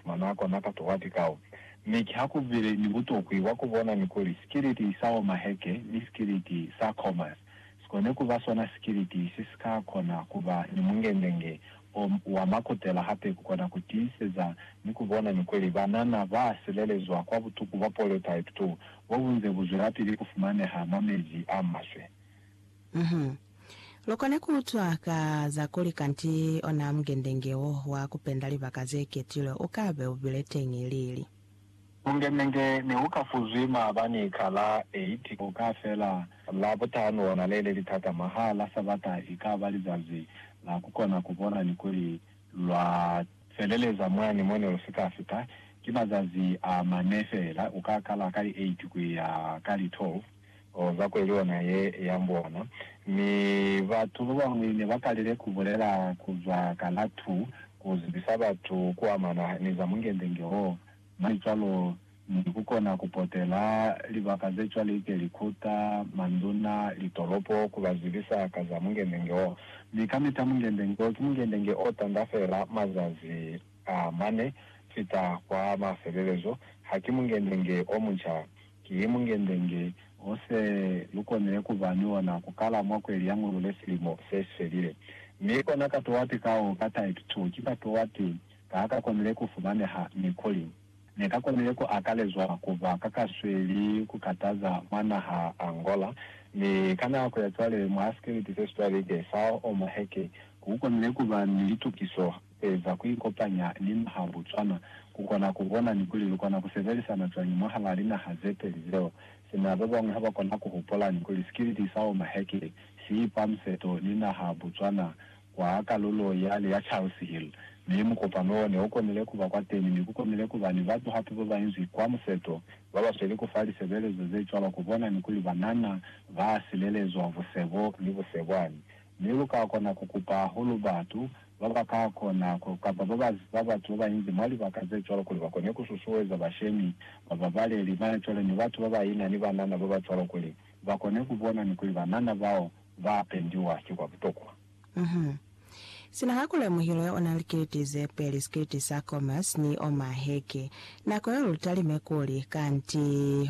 Mwanako na katuha tikao, mi ki ha ku bile ni butokwi bwa ku bona ni kuli sikiliti sa Omaheke ni sikiliti sa Khomas si kone ku ba sona sikiliti se si ka kona ku ba ni mungendenge o wa makutela hape ku kona ku tiiseza ni ku bona ni kuli banana ba silelezwa kwa butuku bwa poliotype 2 bo bu nze bu zwelapili ku fumaneha mwa mezi a maswe. Lukona kuutwa ka za kuli kanti ona mungendenge wo wa kupenda libaka zeketilwe ukabe ubile teñi lili. Mungendenge neuka fuzwi maabani ka la 8 uka fela Labutanu ona lele litata mwaha la Sabata ikaba lizazi la kukona kubona ni kuli lwa feleleza mwani mone lusika fita. Ki mazazi a mane feela, uka kala ka li 8 kuya ka li 12. Oh, za kweli ona ye ya mbona. Mi batu babañwi ne ba kalile ku bulela ku zwa ka la tu, ku zibisa batu ku amana ni za mungendenge wo, mwa cwalo, ni ku kona ku potela libaka ze cwalike, likuta, manduna, litolopo, ku ba zibisa ka za mungendenge wo. Mi kamita mungendenge wo ki mungendenge o tanda fela mazazi a mane fita kwa mafelelezo, haki mungendenge o munca. Ki mungende-nge o se lu konile ku ba ni ona ku kala mwa kweli ya Ngulule silimo se si felile. Mi kona ka Towati ka o ka type to ki ka Towati ka a ka konile ku fumaneha, mi kuli Ne ka konile ku akalezwa ku ba ka ka sweli ku kataza mwa naha Angola. Mi ka nako ya cwale, mwa sikiliti se si cwalilike sa Omoheke, ku konile ku ba ni litukiso Kueza kuikopanya ni naha Botswana, kukona kubona ni kuli lukona kusebelisana cwañi mwahalaa linaha zepeli zeo. Sina babañwi habakona kuhupola ni kuli sikiliti sa Oma Hackley siipa museto ni naha Botswana kwa kalulo yale ya Charles Hill, mi mukopano wo neukonile kuba kwateni mi kukonile kuba ni batu hape babainzwi kwa museto babasweli kufa lisebelezo zecwalo kubona ni kuli banana baasilelezwa busebo ni busebwani Mi lu ka kona ku kupa hahulu batu ba ba ka kona ku, kamba ba ba ziba batu ba bañinzi mwa libaka ze cwalo, kuli ba kone ku susueza bashemi, ba babaleli, mane cwale ni batu ba ba ina ni banana ba ba cwalo, kuli ba kone ku bona ni kuli banana bao ba pendiwa ki kwa butokwa. Uhum. Sina ha kulemuhilo ya ona likiliti ze peli, sikiliti sa Comas ni o maheke, nako yeo lu talime kuli, Kanti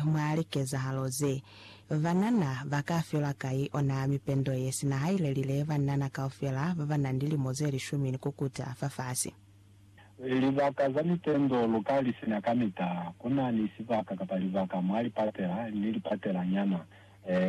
mwa likezahalo ze, Banana ba ka fiwa kai ona mipendo ye sina hailelile banana kaufela ba ba na ni lilimo ze lishumi ni kukuta fafasi? Libaka za mipendo lu ka li sina kamita. Ku na ni sibaka kapa libaka mwa lipatela ni lipatela nyana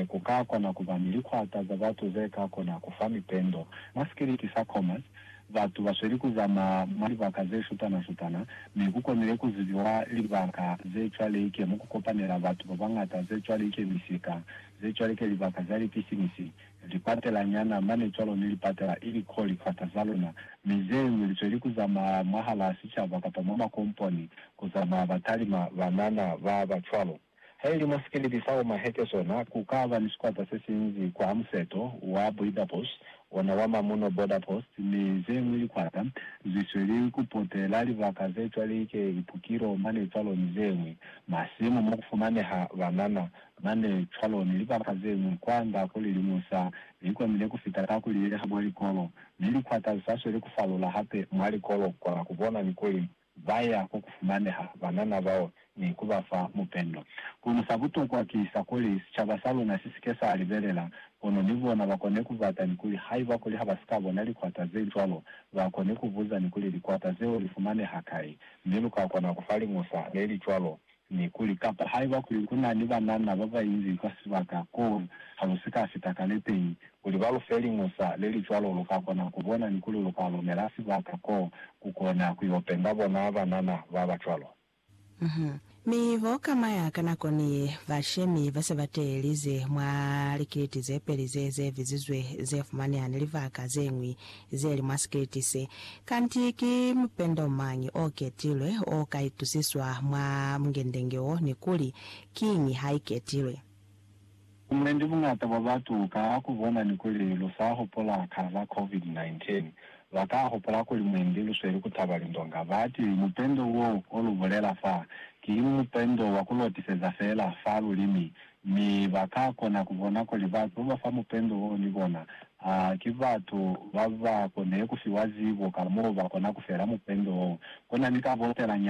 ku ka kona ku ba ni likwata za batu ze ka kona ku fa mipendo. Mwa sikiliti sa Comas, Batu ba sweli ku zamaya mwa libaka ze shutana-shutana, mi ku konile ku zibiwa libaka ze cwaleike mo ku kopanela batu ba bañata, ze cwaleike misika, ze cwaleike libaka za lipisinisi, lipatela nyana mane cwalo ni lipatela ili ko likwata za luna, mi ze ñwi li sweli ku zamaya mwahalaa sicaba kapa mwa makomponi, ku zamaya batalima banana ba ba cwalo. Haili mwa sikiliti sa Oma Heke sona ku ka ba ni sikwata se si nzi kwa museto wa Boidapus, ona wa mamuno Border Post, mi ze ñwi likwata zi sweli ku potela libaka ze cwalike Ipukilo mane cwalo ni ze ñwi, masimu mo ku fumaneha banana mane cwalo ni libaka ze ñwi kwa nda ku lilimusa. Li komile ku fita ka ku lileha mwa likolo, mi likwata li sa sweli ku falula hape mwa likolo kwa ku bona ni kuli ba ya ko ku fumaneha banana bao ni ku ba fa mupendo. Kono sa butokwa ki sa kuli sicaba sa luna si si ke sa libelela, kono ni bona ba kone ku bata ni kuli haiba kuli ha ba si ka bona likwata ze cwalo, ba kone ku buza ni kuli, Likwata zeo li fumaneha kai? Mi lu ka kona ku fa liñusa le li cwalo Mi kuli, Kapa haiba kuli ku na ni banana ba ba inzi kwa sibaka koo, ha lu si ka fita ka lepei, kuli ba lu fe liñusa le li cwalo, lu ka kona ku bona ni kuli lu ka lumela sibaka koo ku kona ku yo penda bona banana ba ba cwalo. Uhum. Mi bo kamaya ka nako ni ba shemi ba se ba teelize mwa likiliti ze peli ze ze bizizwe ze fumaneha ni libaka ze ñwi zeli mwa sikiliti se. Kanti ki mupendo mañi o ketilwe o ka itusiswa mwa mungendenge wo, ni kuli kiñi ha i ketilwe? Buñendi buñata bwa batu ka ha ku bona ni kuli lu sa hupula ka za COVID-19, ba ka hupula kuli mwendi lu sweli ku taba lindonga. Ba ti, Mupendo wo o lu bulela fa, ki mupendo wa ku lotiseza fela fa lulimi, Mi ba ka kona ku bona kuli batu ba ba fa mupendo wo ni bona a ki batu ba ba kone ku fiwa zibo ka mo ba kona ku fela mupendo wo. Ku na ni ka botela nyana.